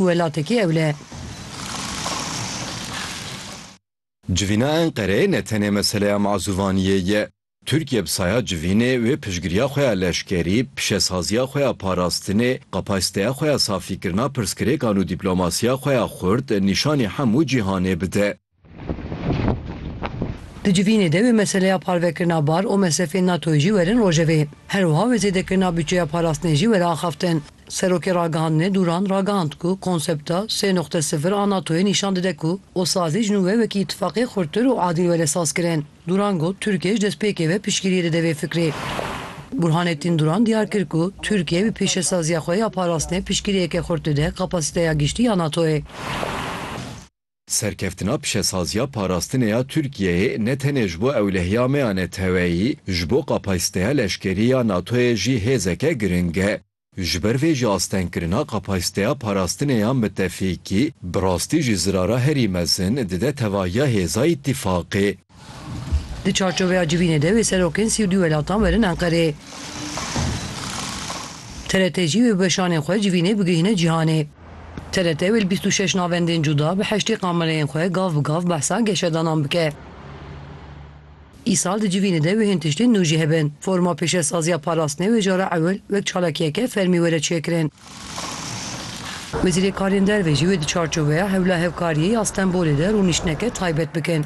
Welatekî ewle. Civîna Enqereyê ne tenê meseleya mazûvaniyê ye. Tirkiye bi saya civînê wê piştgiriya xwe ya leşkerî, pişesaziya xwe ya parastinê, kapasiteya xwe ya safîkirina pirsgirêkan û dîplomasiya xwe ya xurt nîşanî hemû cîhanê bide. Di civînê de wê meseleya parvekirina bar û mesrefên NATO'yê jî werin rojevê. Her wiha wê zêdekirina butçeya parastinê jî were axaftin. Serokê Ragihandinê Duran ragihand ku konsepta sê noqte sifir a NATO'yê nîşan dide ku osazî ji nû ve wekî îtîfaqê xurttir û adîl were sazkirin. Duran got Tirkiye ji destpêkê ve piştgiriyê dide vê fikrê. Burhanettin Duran diyar kir ku Tirkiye bi pêşesaziya xwe ya parastinê piştgiriyeke xurt dide kapasiteya giştî ya NATO'yê. Serkeftina pişesaziya parastinê ya Tirkiyeyê ne tenê ji bo ewlehiya me ya neteweyî, ji bo kapasîteya leşkerî ya NATO'yê jî hêzeke giring e. Ji ber vê jî astengkirina kapasîteya parastinê ya mitefîkî, bi rastî jî zirara herî mezin dide tevahiya hêza îtîfaqê. Di çarçoveya civînê de wê serokên sî û dû welatan werin Enqerê. TRT jî wê bi weşanên xwe civînê bigihîne cîhanê. TRT wê li bîst û şeş navendên cuda bi heştê kamereyên xwe gav bi gav behsa geşedanan bike. Îsal di civînê de wêhên tiştên nû jî hebin. Forma pêşesaziya parastinê wê cara ewil wek çalakiyeke fermî were çêkirin. Wezîrê Karên Derve jî wê di çarçoveya Hewla Hevkariyê ya Stenbolê de rûniştineke taybet bikin.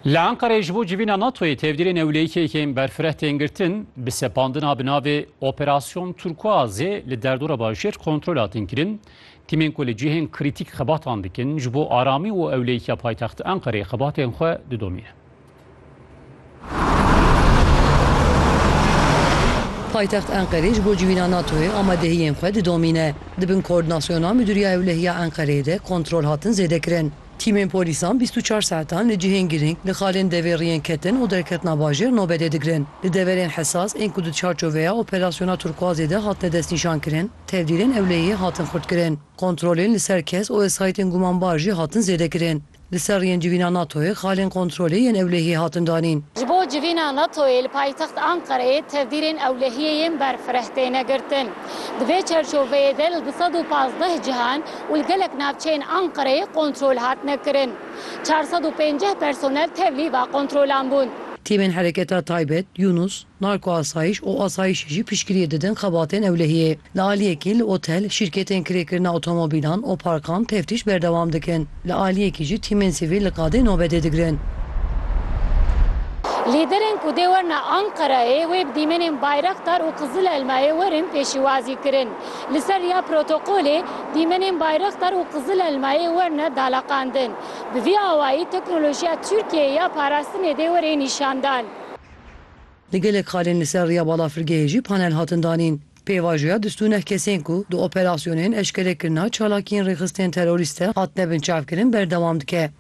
Li Enqereyê ji bo civîna NATOyê tevdîrên ewlêyîkek ên berfireh tên girtin, bi sepandina bi navê Operasyon Turkuazê li derdora bajêr kontrol hatin kirin. Tîmên ku li cihên krîtîk xebatan dikin, ji bo aramî û ewlêyîkiya paytexta Enqereyê xebatên xwe didomînin. Paytext Enqerê ji bo civîna NATO'yê amadehiyên xwe didomîne. Di bin koordinasyona Midûriya Ewlehiya Enqereyê de kontrol hatin zêdekirin. Tîmên polîsan bîst û çar saetan li cihên girîng li xalên devêriyên ketin û derketina bajêr nobedê digirin. Li deverên hesas ên ku di çarçoveya operasyona Turkuazê de hatine destnîşankirin, tevdîrên ewlehiyê hatin xurtkirin. Kontrolên li ser kes û wesayîtên gumanbar jî hatin zêdekirin. Li ser yên civîna NATO'yê xalên kontrolê yên ewlehiyê hatin danîn. Ji bo civîna NATO'yê li paytext Anqereyê tevdîrên ewlehiyê yên berfireh têne girtin. Di vê çerçoveyê de li du sed û pazdeh cihan û li gelek navçeyên Anqereyê kontrol hatine kirin. Çar sed û pênceh personel tevlî va kontrolan bûn. Tîmên Hereketa Taybet, Yunus, Narkoasayîş û asayîşê jî piştgiriyê didin xebatên ewlehiyê. Li aliyekî li otel, şîrketên kirêkirina otomobîlan, oparkan teftîş berdewam dikin. Li aliyekî jî tîmên sivîl li qadê nobetê digirin. Lîderên ku dê werine Anqerayê wê bi dîmenên Bayraktar û Qizilelmayê werin pêşîwazî kirin. Li ser riya protokolê dîmenên Bayraktar û Qizilelmayê werine daleqandin. Bi vî awayî teknolojiya Tirkiyeyê ya parastinê dê were nîşandan. Di gelek xalên li ser riya balafirgehê jî panel hatin danîn. Pêvajoya dust û neh kesên ku di operasyonên eşkerekirina çalakiyên rêxistinên terorîst de hatine binçavkirin berdewam dike.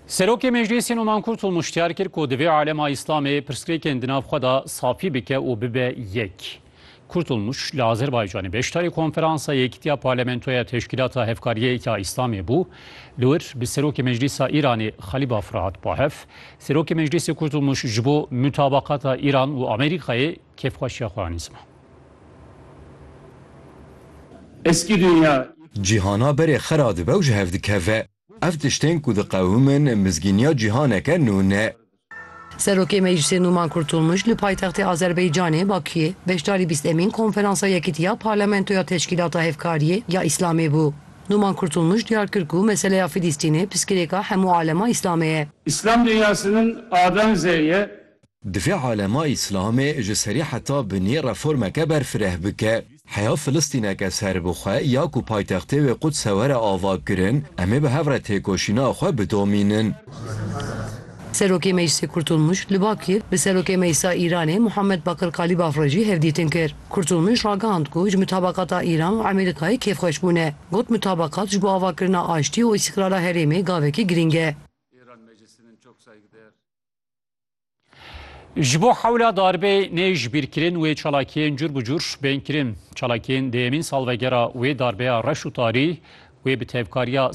Serokê Meclîsê Numan Kurtûl muştiyar kir ku divê alema Îslamê pirsgirêkên di nav xwe de safî bike û bibe yek. Kurtulmuş li Azerbaycanê beşdarî Konferansa Yekîtiya Parlamentoya Teşkîlata Hevkariyê ya Îslamê bû. Li wir bi Serokê Meclîsa Îranê Xalîbafra hat bahev. Serokê Meclîsê Kurtulmuş ji bo mutabaqata Îran û Amerîkayê kêfxweşiya xwe anîzma. Eskî dinya. Cîhana berê xera dibe û ji hev dikeve. Ev tiştên ku diqewimin mizgîniya cîhaneke nû ne. Serokê Meclîsê Nûman Kurtulmuş li paytextê Azerbaycanê, Bakuyê, beşdarî bîst emîn Konferansa Yekîtiya Parlamentoya Teşkîlata Hevkariyê ya Îslamê bû. Nûman Kurtulmuş diyar kir ku meseleya Fîlîstînê piskirêka hemû alema Îslamê ye. Îslam dinyasinin adan zêyê Divê alema Îslamê ji serî heta binê reformeke berfireh bike. Heya Filistîneke serbixwe ya ku paytextê wê Qudse were avakirin, em ê bi hev re têkoşîna xwe bidomînin. Serokê Meclisê Kurtulmuş li Bakir bi Serokê Meclisa Îranê Muhammed Bakir Kalîbaf re jî hevdîtin kir. Kurtulmuş ragihand ku ji mutabakata Îran û Amerîkayê kêfxweş bûne. Got mutabakat ji bo avakirina aştî û îstîqrara herêmê gavekî girîng e. Ji bo hewla darbê nê jibîrkirin wê çalakiyên cur bi cur bên kirin. Çalakiyên dêyemîn salvegera wê darbeya reş û tarî wê bi tevkariya